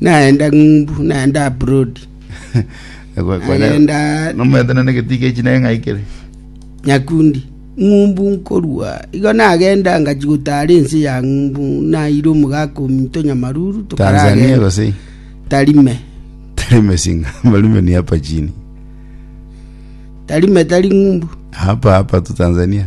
Naende ng'umbu, naende abroad, naende Nomerete naende getii gie chinake ng'aikire. nyakundi. Ng'umbu nkorua, igo nagenda ngachia gotaara ense ya ng'umbu, naira omogaka ominto Nyamaruru, Tanzania tokaragenda gose Tarime. Tarime singa Tarime ni hapa chini Tarime tari ng'umbu. hapa hapa tu Tanzania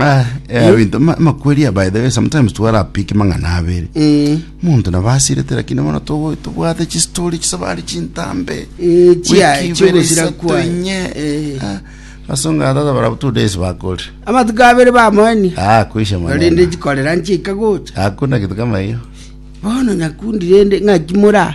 Ah, eh, ebinto ma- makweri by the way sometimes twarapiki mang'ana abere Eh, omonto nabasirete lakini bono togo- tobwate chistori chisabari chintambe eh, chia- Wiki ibere chiogosira isato kwaye. enye. Eh. Ah, basonga atata barabu two days bakore amatuko abere bamoeni Ah, kuisha rinde maneno chikorera nchika gocha hakuna kitu kama hiyo bono nyakundi rende ng'aki mora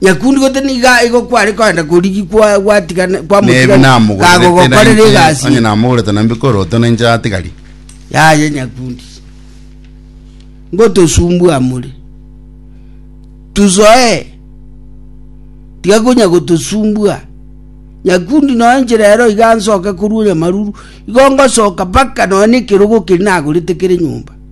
yakundigote niga igo kware koenda korigi kwa- gwatiga- Nebe kwamotiga namogorete kagogokorera nainche, onye egasi namogorete na mbikoroto nainche atigari. yaye nyakundi ngotosumbua more tusoe tiga konya gotosumbua nyakundi noe nche rero iga nsoke korwa onyamaruru igo ngosoka mpaka noe na ekerogo keri nagorete kere nyomba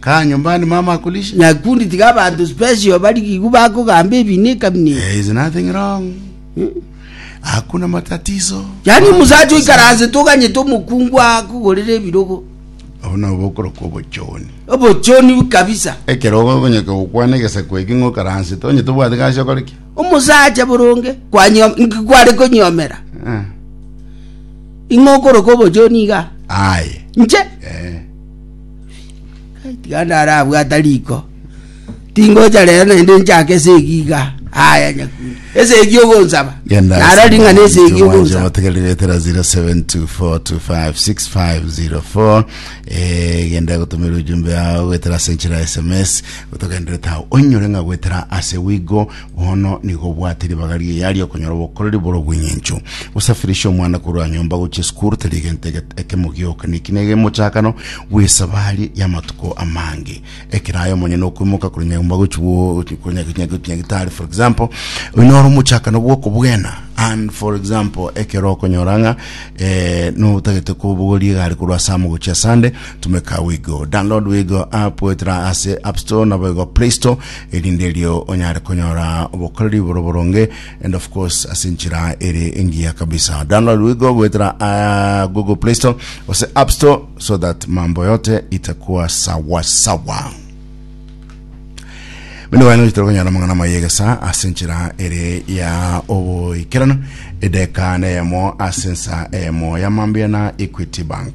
Kaa nyumbani, mama akulishe. Nakundi tiga abanto special barigigwe bakogamba ebinto ekabineti. There is nothing wrong. Hakuna matatizo. Yaani Mama omusacha akosabe. oikaranse toganyete omokungu akogorera ebirogo. Obo nobo okorokwa obochoni. Obochoni kabisa. Ekero ogonyeka gokwana egesaku eke ng'a okaransete, onye tobwati gasi okore ki? Omosacha boronge kwanyom- nki- kware konyomera. Eh. Ing'okoroka obochoni iga. Aye. Inche Eh. tiga ndarabwata riko tingocha rero naende nchake esegi iga aya nyakundi esegi ogonsaba Genda naro ring'ana esegi ogonsaba otegereretera 0724256504 eh, genda gotumira ujumbe yao gwetera senchira sms gotogendereta onyore ng'a gwetera ase wigo Bono nigo obwate ribaga ri'eya ri'okonyora obokoreri bore obweng'encho. Gosafirisha omwana korwa nyomba gochia esukuru tari egento ege- ekemo gioka, na eki nege emochakano bw'esabari y'amatuko amange. Ekero aye omonyene okoimoka korwa nyomba gochia bo- korwa nya- nya- nya- nyagetari for example, oyio noro omochakano bw'okobwena and for example ekero okonyora ng'a eh, notagete kobogoria egari korwa ase amo gochia ase ande, tumeka Wigo. Download Wigo app goetera ase App Store nabo igo Play Store, erinde erio onyare konyora obokoreri bore boronge and of course ase enchera ere engiya kabisa. Download wigo goetera ah, Google Play Store ose App Store so that mambo yote itakuwa sawa sawa. Bende bwaino titari konyara amang'ana mayegesa ase enchera ere ya oboikerano edeka neyemo ase ensa eyemo ya mambia na Equity Bank.